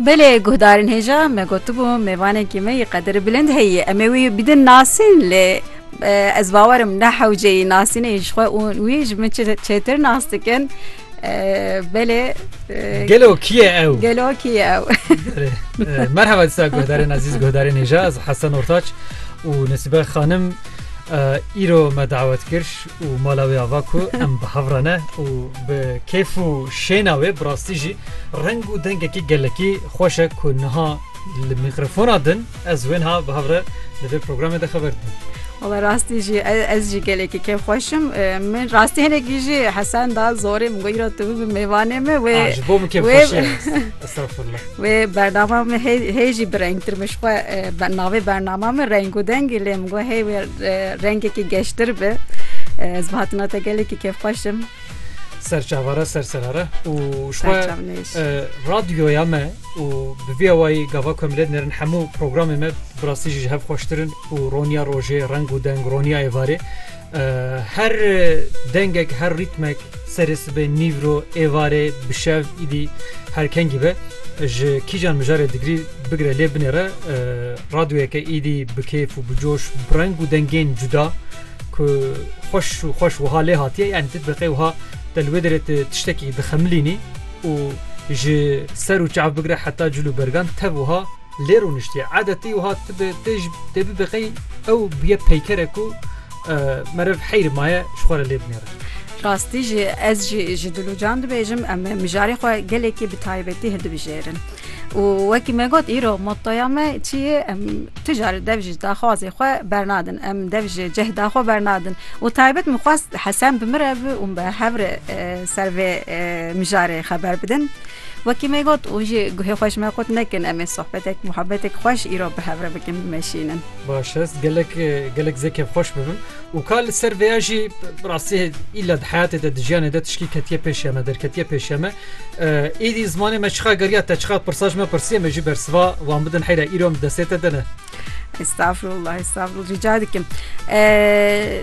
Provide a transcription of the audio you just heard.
Belê guhdarên hêja me gotibû mêvanekî me yê qedir bilind heye em ê wî bidin nasîn lê ez bawerim ne hewce yî nasînê ji xwe û wî ji min çêtir nas dikin belê gelo kî ye ew gelo kî ye ew merheba disa guhdarên ezîz guhdarên hêja ez hesen ortaç û nesibe xanim îro me dawet kir û mala wê ava ku em bi hev re ne û bi kêf û şêna wê bi rastî jî reng û dengekî gelekî xweş e ku niha li mîkrofona din ez wênha bi hev re li vê programê de xeber didim. Wala rastî jî ez jî gelekî kêf xweşim. Min rastî hinekî jî Hesen da zorê min got îro tu bibe mêvanê me wê wê Wê bernama min hê jî bi rengtir min xwe navê bernama min reng û dengî lê min got hê wê rengekî geştir bi ez bi hatina te gelekî kêfxweşim. Serçavara serserara û xwe radyoya me û bi vê awayî gava ku em lê nerin hemû programê me bi rastî jî ji hev xweştirin û roniya rojê reng û deng roniya êvarê Her dengek her rîtmek serê sibê nîvro êvarê bişev îdî herkengî be ji kîjan mijarê digrî bigire lê binêre radyoyeke îdî bi kêf û bi coş bi reng û dengên cuda ku xweş û xweş wiha lê hatiye yani ti diqê wiha te li wê derê tu tiştekî dixemilînî û ji ser û çav bigire heta cil û bergan tev wiha Lê rûniştiye edetî wiha tibe tê ji tê bibe qey ew bûye peykere ku meriv heyr maye ji xwe re lê binêre. Rastî jî ez jî ji Dilûcan dibêjim em mijarê xwe gelekî bi taybetî hildibijêrin. Û wekî me got îro mottoya me çi ye em tu carî dev ji daxwazê xwe bernadin em dev ji cehda xwe bernadin û taybet min xwest Hesen bi min re bi û me hev re ser vê mijarê xeber bidin. Wekî me got û ji guhê xwe ji me qut nekin em ê sohbetek muhebetek xweş îro bi hev re bikin bimeşînin. Baş est gelek gelek zê kevxweş bibim û ka li ser vêya jî bi rastî îla di heyatê de di jiyanê de tişkî ketiye pêşiya me derketiye pêşiya me êdî zimanê me çiqa geriya te çiqa pirsa ji me pirsiye me jî bersiva wan bidin heyra îro min destê te de ne Estağfurullah, estağfurullah. Rica edikim. Ee,